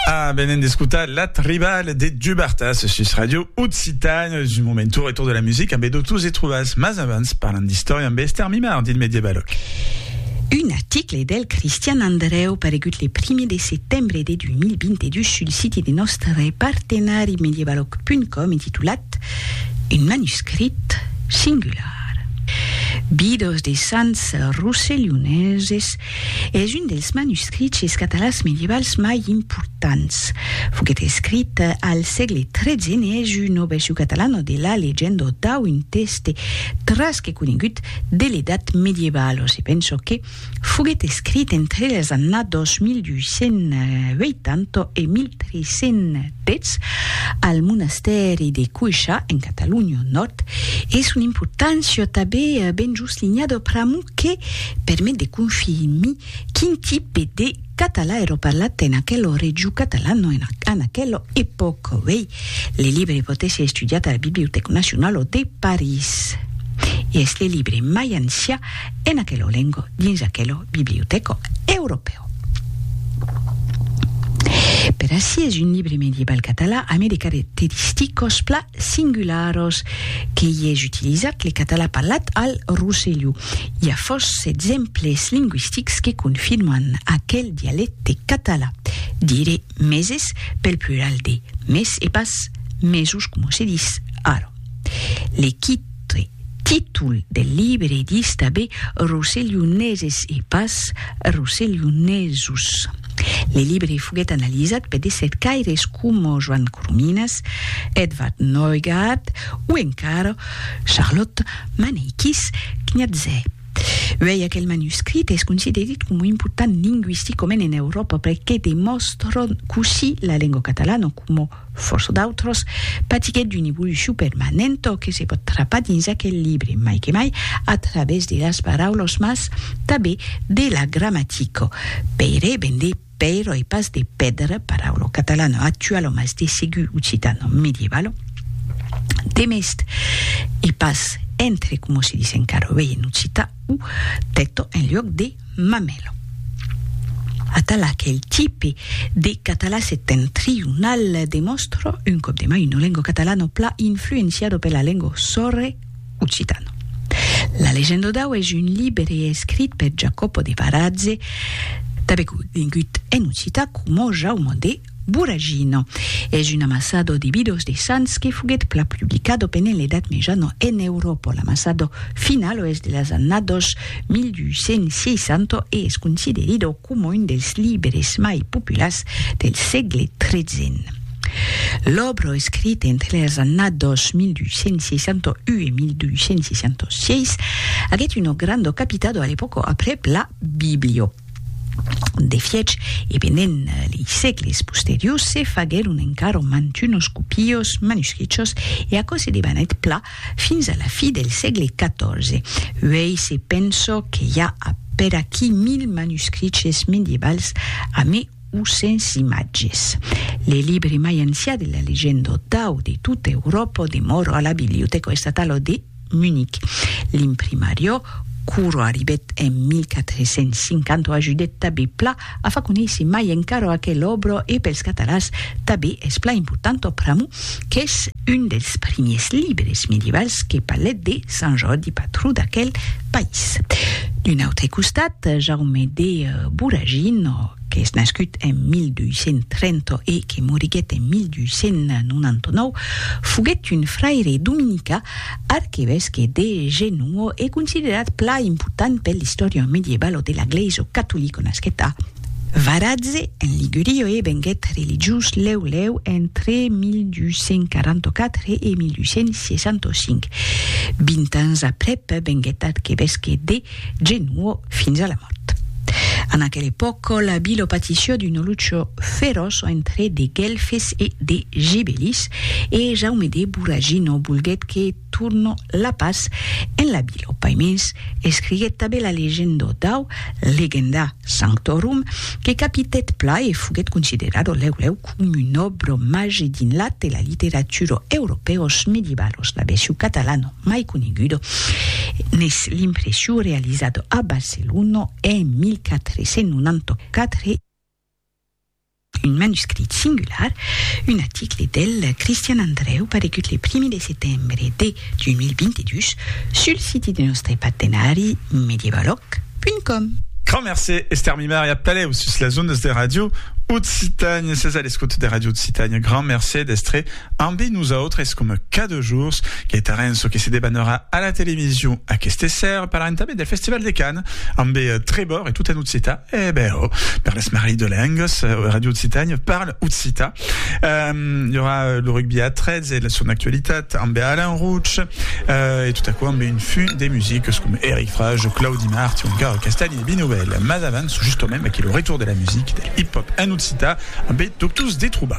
Ah, venen d'escotar La Tribal de Dubartas sus Radio Occitane. Du moment tour e tour de la musica amb Edotus e Truvas, mas abans parlan d'istòria amb Esther Mimard dins Medievaloc. Un article del Cristian Andreu paregut le primier de setembre de 2022 sul siti de nòstre partenari medievaloc.com intitulat Un manuscrit singular. Bidos de sants rosselhoneses Es un dels manuscriches catalans medievals mai importants. Foguèt escrit al sègle tretze n'es una version catalana de la legenda dau un tèxte tras que conegut de l'Edat Medievalo. Se pensa que foguèt escrit entre las annadas 1280 e 1330. Petz, al monastèri de Cuixa, en Catalonha Nòrd, e son importància tabé ben jos linhada pr'amor que permet de confirmir quin tipe de catalan èra parlat en aquela region catalana en aquela epòca. Uèi, le libre pòt èsser estudiat a la Bibliotèca Nacionala de París e es le libre mai ancian en aquelo lengo dins aquelo bibliotèco europèu. Per ací es un libre medieval catalan amé de caracteristicos pla singularos que i es utilizat le catalan parlat al Rosselló. I a fòrça d'exemples lingüistics que confirman aquel dialècte catalan. Dire meses pel plural de mes e pas mesos coma se dis ara. Le qui Autre títol del libre ditz tanben Rosselhoneses e pas Rosselhonesos. Le libre foguèt analizat per de cercaires coma Joan Corominas, Edvard Neugaard o encara Charlotte Maneikis Kniaze. Uèi aquel manuscrit es considerit coma important lingüisticament en Euròpa perque demòstra cossí la lengua catalana coma Fòrça d'autras patiguèt d'una evolucion permanenta que se pòt trapar dins aquel libre, mai que mai a través de las paraulas mas tanben de la gramatica. Pèire ven de pèira e pas de pèdra, paraula catalana actuala mas de segur occitana medievala. Demest e pas entre coma se dis encara uèi en occitan o tèta en luòc de. Mamelo. Atala qu'el tipe de català septentrional demòstra un còp de mai una lenga catalana pla influenciada pela lenga sòrre occitana. La legenda dau es un libre escrit per Jacopo de Varazze, tanben conegut en occitan coma Jaume de Buragino. Es un amassado de bidos de sants que foguèt plan publicado pendent l'Edat Mejana en Euròpa. L'amassado final o es de las annados 1260 e es considerido coma un dels libres mai populars del sègle tretze. L'òbra escrita entre las annados 1261 e 1266 aguèt una granda capitado a l'epòca aprèp la Biblio. De fiech, e pendent lei sègles posteriors se faguèron encara mantunos copios manuscrichos e aquò se debanèt pla fins a la fi del sègle XIV. Uèi se penso que i a a peraquí mil manuscriches medievals a me o sens imatges. Le libre mai ancià de la legenda otau de tota Euròpa demòra a la Bibliotèca estatala de Munic. L'imprimariò, quora arribèt en 1450, ajudèt tabé pla a far conéisser mai encara aquela òbra e pels catalans tabé es pla importanta pr'amor qu'es un dels primiers libres medievals que palet de Sant Jordi patró d'aquel país. D'un autre costat, Jaume de Voragino, qu'es nascut en 1230 e que moriguèt en 1299, foguèt un fraire dominicà, arquevesque de Genoa e considerat plan important per l'istòria medievalo de la Glèisa catolica, nasquèt a. Varatze, en Ligurio e venguèt religiós lèu lèu entre 1244 e 1265. Vint ans aprèp venguèt arquevesque de Genuò fins a la mòrt. En aquel epòc la vila patissió d'una lucha feròç entre de Guelfes e de Gibelis e Jaume de Voragino volguèt que Turno la pas en la Bilo Paimés escriguèt tabé la legendo dau Legenda Sanctorum que capitèt pla e foguèt considerado lèu lèu com un òbro màger dins l'at e la literaturo europèos medievalos, la versio catalano mai conegudo n'es l'impressio realizado a Barcelono en 1494. Un manuscrit singular, un aticle del Cristian Andrèu paregut le primi de setembre de 2022 sul siti de nòstre partenari medievaloc.com. Grand mercé Esther Mimar e atalèu sus las ondas de Radio Occitània. Sètz a l'escota de Radio Occitània. Grand mercé d'èstre ambe nosautres coma cada jorns. Queitarem çò que se debanarà a la television aqueste ser. Parlarem tanben del Festival de Cannes ambe Trevor e tota Nocita. Eh ben, oh, per l'esmarrit de lengas, Radio Occitània parle occità. Um, hi aurà lo rugby a 13 e la son actualitat amb Alain Rouch, uh, e tot aquò amb un fum de musiques com Eric Frage, Claudi Mart o encara Castagni e Binovel. Mas avans, justament, aquí lo retour de la musique, del hip-hop en occità, amb Doctors Detruba.